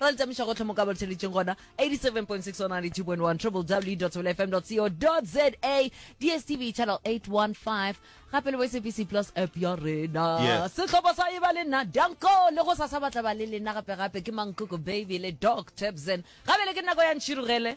Ra le tšamiša gohle mo ka ba le theleditšeng gona 87.6 or 92.1 www.thebelewfm.co.za DSTV channel 815 gape le bo SABC plus app ya rena Yeah. sehlopha sa e ba le nna danko le go sasa batla ba le lena gape gape ke mankoko baby le doc tebsen gabe le ke nako ya ntšhirogele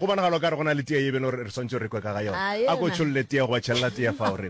Go bonagala o ka re go na le tee ye beno re swantse re kwe ka ga yona. A ko tšholle tee goba tšhelela tee fao re.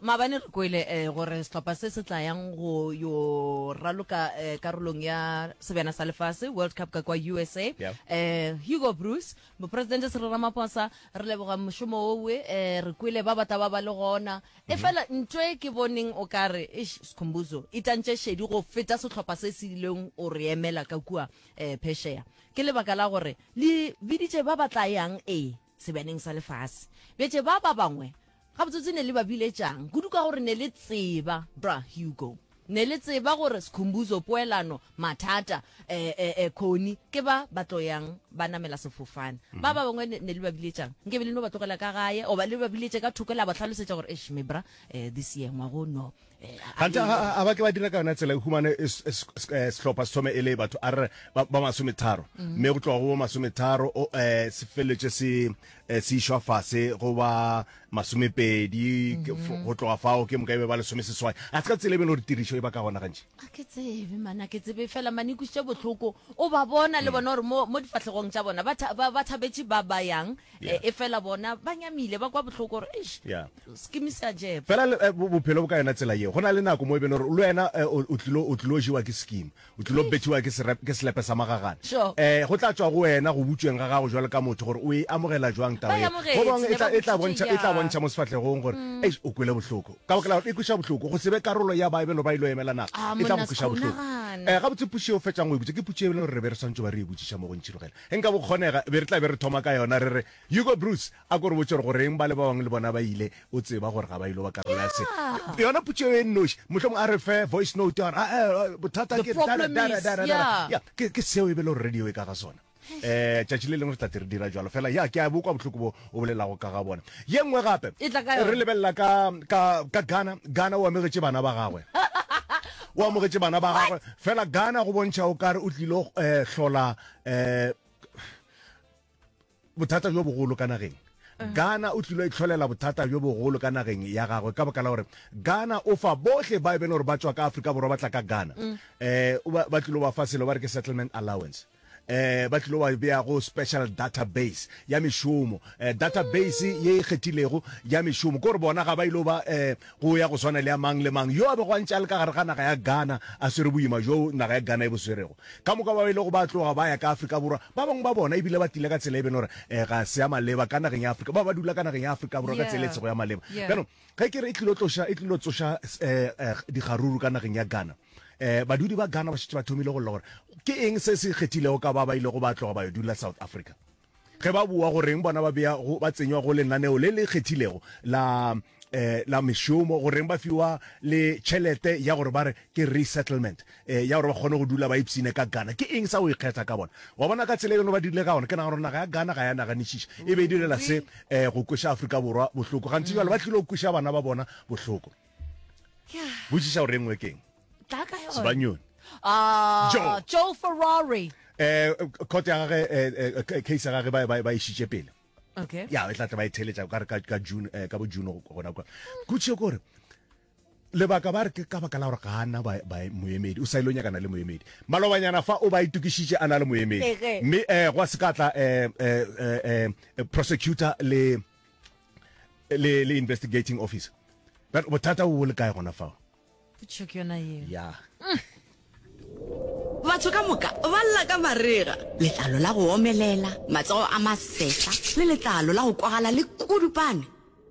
Mabane re kwele eh, gore sehlopha se se tlayang go yo raloka eh, karolong ya sebjana sa lefase World Cup ka kwa USA yeah. eh, Hugo Bruce mopresidente Cyril Ramaphosa re leboga mošomo owe eh, re kwele ba batla ba ba le gona mm -hmm. e fela ntho e ke boneng o ka re ish sekhombuzo e tantše šedi go feta sehlopha se se ileng o re emela ka kua eh, pheshea Ke lebaka la gore Le biditše ba ba tla yang, ee, sebeaneng sa lefase. Bjatše ba, ba bangwe, gabotsebotse ne le ba biletšang, kudu ka gore ne le tseba, Bra. Hugo, ne le tseba gore Sikhumbuzo, poelano, mathata, e-e-e, Connie, ke ba ba tlo yang ba namela sefofane. Ba, ba bangwe ne, ne le ba biletšang. Nkabe le no ba tlogela ka gae, goba le ba biletše ka thoko la ba hlalosetša gore, Eish, me Bra, e, this year, ngwago, no, gante a ba ke ba dira ka yona tsela e humane eh, sehlopha se thome e le batho a re ba masometharo mm. mme go tloga go bo masometharo um eh, se feleletše se eh, se išwa fase go ba masomepedi mm-hmm. go tloga fao ke moka e be ba lesome seswai a se ka tsela e be le gore tirišo e ba ka gona gantši a ke tsebe mana ke tsebe fela mane ikusitše botlhoko o ba bona le mm. bona gore mo difatlhegong tša bona ba thabetše ba ba yang e fela bona ba nyamile ba kwa botlhoko gore Fela bophelo bo ka yona tsela yeo. Go na le nako mo e beno gore le wena o tlilo, o tlilo jewa ke scheme. O tlilo bethiwa ke serep, ke selepe sa magagana. Eh, go tla tšwa go wena go butšweng ga gago jwalo ka motho gore o e amogela jwang taba eo. Go bangwe e tla, e tla bontšha, e tla bontšha mo sefahlegong gore, eish, o kwele bohloko. Ka baka la gore e kweša bohloko. Go se be karolo ya ba e beno ba ilo emela nako, e tla go kweša bohloko. Eh, gabotse putšo eo fetšang go e butša ke putšo e beno gore re be re swantšo ba re e butšiša mo go Ntšhirogela. Ge nka bo kgonega, be re tla be re thoma ka yona re re, Hugo Broos, A ko re botše gore goreng ba le ba bangwe le bona ba ile, o tseba gore ga ba ilo ba karolo ya se. Yeah. Yona potše eo e nnoši, mohlomong a re fe voice note ya gore, ah, eh, eh, bothata The ke dara, problem dara, is, dara, dara. yeah. Ya, ke ke seo e be le gore radio e ka ga sona. Eh, tšatši le lengwe re tla te re dira jalo fela. Ya, ke a bo kwa bohloko bo o bolelago ka ga bona. Ye nngwe gape, E tla ka yona. re lebelela ka, ka, ka Ghana. Ghana o amegetše bana ba gagwe. o amogetše bana ba gagwe fela Ghana go bontšha o kare o tlilo eh, hlola eh, bothata bjo bogolo ka nageng gana o tlilo itlholela bothata bjo bogolo ka nageng ya gagwe ka baka la gore gana o fa bohle ba e bele gore ba tswa ka afrika borwa ba tla ka gana um eh, o ba ba tlilo ba fa selo ba re ke settlement allowance eh ba tlilo ba bea go special database ya mešomo eh, database ye e kgethilego ya mešomo kore bona ga ba ile ba eh, go ya go swana le ya mang le mang yo a bego a ntše a le ka gare ga naga ya Ghana a swere boima bjo naga ya Ghana e bo swerego. Ka moka bao e lego ba tloga ba ya ka Afrika Borwa, ba bangwe ba bona e bile ba tlile ka tsela e beno re eh ga se ya maleba ka nageng ya Afrika, bao ba dula ka nageng ya Afrika Borwa ka tsela e sego ya maleba. Bjanong ge ke re e tlilo tloša, e tlilo tsoša eh eh dikgaruru ka nageng ya Ghana, eh badudi ba Ghana ba šetše ba thomile go lla gore ke eng se se ikgethilego ka ba ba ilego ba tloga ba yo dula South Africa. Ge ba bua goreng bona ba bea go ba tsenywa go lenaneo le le kgethilego la eh, la mešomo goreng ba fiwa le tšhelete ya gore ba re ke resettlement eh, ya gore ba kgone go dula ba ipsine ka Ghana ke eng sa go ikgetha ka bona wa bona ka tsela e ba dirile ka gona ke nagana gore naga ya Ghana ga ya naganišiša e be e direla se eh, go kweša Afrika Borwa bohloko gantsi jalo ba tlile go kweša bana ba bona bohloko botšiša gore e nngwe keng tla ka yone sebanyoni Ah, Joe. Joe Ferrari. eh court ya gage eh, eh, eh, case ya gage ba ba ba ishitše pele Okay. ya e tla tla ba e theletša ka re ka ka June eh, ka bo June go- gona kwa kutšhe gore lebaka ba re ke ka baka la gore ga ana ba ba moemedi o sa ile o nyakana le moemedi malobanyana fa o ba itukišitše a na le moemedi Ege. mme eh gwa se ka tla eh eh eh, eh prosecutor le le le investigating officer But bothata o le kae gona fao Potšišo ke yona yeo. Ya. Batho ka moka ba lla ka marega, letlalo la go omelela, matsogo a masehla le letlalo la go kwagala le kudupane.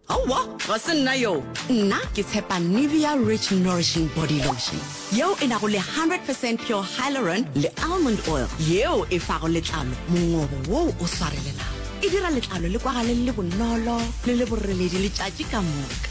Aowa, ga se nna yoo. Nna ke tshepa Nivea Rich Nourishing Body Lotion yeo e nago le 100 percent pure hyaluron le almond oil yeo e fago letlalo mongobo woo o swarelelago. E dira letlalo le kwagale le le bonolo le le boreledi letšatši ka moka.